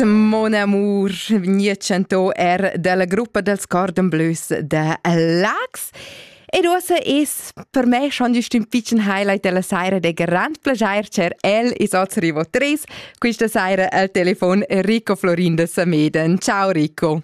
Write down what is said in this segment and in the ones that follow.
Mon amour vegnia chantò er dalla gruppa dels Cordon Bleus de Lax. Ed uossa es per me schon just un piccin highlight della saira de grand plagier cer el is oz rivo 3. Questa saira al telefon Rico Florin de Sameden. Ciao Rico.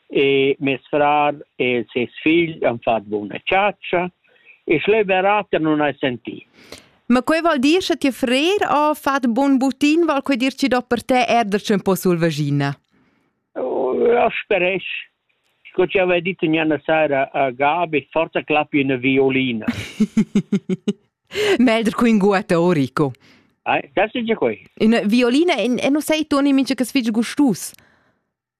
e mes frar e ses figl han fatg buna chatscha e schleu berater non hai sentì. Ma quei val dir che ti frer ha fatg bun butin, val quei dir chi do per te erder chen po sulvagina? Ja speresch. Sco ci aveva detto ignana sera a Gabi, forza clappi una violina. Melder cu inguata Orico. Ai, das ist ja quei. Una violina e non sei tu nemici che sfige gustus.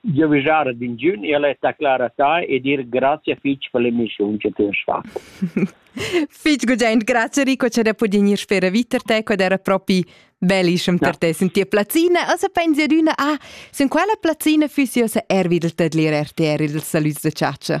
giavischar ad ingiun e al è aclara ta e dir grazie fitg per l'emissiun che ti hast fatto. Fitg gugent, grazie Rico, che da pudin ir spera vita te, quad era propi bellissem per te sentir plazzina. Also pensi ad una, ah, sin quella plazzina füssi ossa er wieder tadlir RTR, il saluts de ciaccia.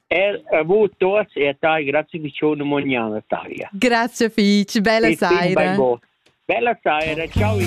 Er a voi tots e a tai, grazie Vicione Mognana Talia. Grazie fich, bella saira. Bella saira, ciao.